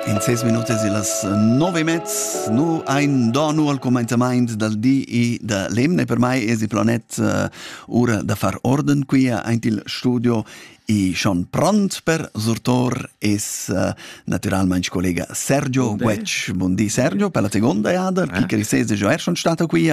In ses minutas illas nove e mezz nu ein do nu al comenzamaint dal di e da l'emne per mai es il planet uh, ura da far orden qui aint il studio e schon pront per sortor es uh, naturalmente collega Sergio Guetsch. Buondì Sergio per la seconda jada, eh? chi che risese giò er schon stato qui.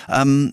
Um,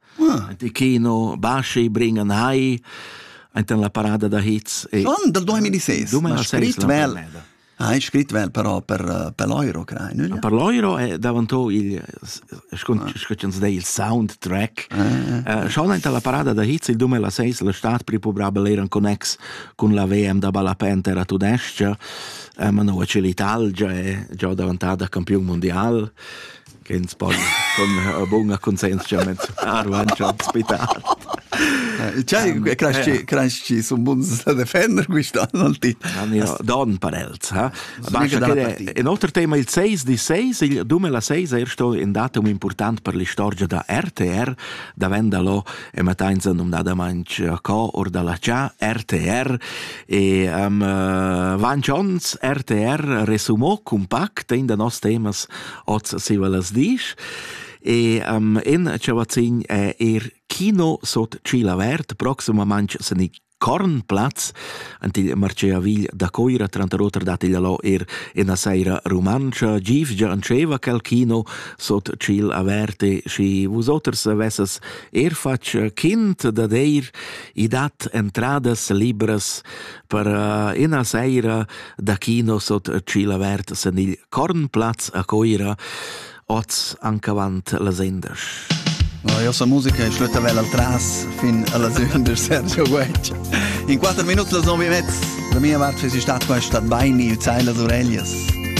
Ah, de kino basci bringen hai enten la parada da hits e Schon dal 2006. Du ma scrit vel. Hai scrit vel però per eh, per l'euro crai, no? Per l'euro è davanto il scotschens dei il soundtrack. Schon enten la parada da hits il 2006 la stat pripobrabel eran connex con la VM da Ballapente era tudescia, ma no c'è l'Italia, è già davantada campion mondial. Ken sbagl con bunga conscienzia mez arvancia al spital. Cai cresci sun buns da defender quist'anno al ti. Don per els, ha? Un autre tema il 6 di 6, il 2006 è stato un datum important per la storia da RTR, da Vendalo e Matainza num da manch co or dalla cia RTR e um, Van Jones RTR resumò compact in da nos temas oz siva las disch. E um, in chavazin è er Kino sot Cila Vert, proximamente sen i Kornplatz, ant il Marceavigl da Coira, tranter oter dat il lo er ina seira romancha, gifgia anceva quel kino sot Cil Averte, și vusoters vesses er fatg kind da deir, i dat entradas libras per uh, ina seira da kino sot Cila Vert sen il Kornplatz a Coira, oz ancavant la sendas. No, io sono musica e schlutta vel al tras fin alla seconda Sergio Guecci. In quattro minuti la zombie mezz. Da mia parte si stat questa baini il zeil das Orellas.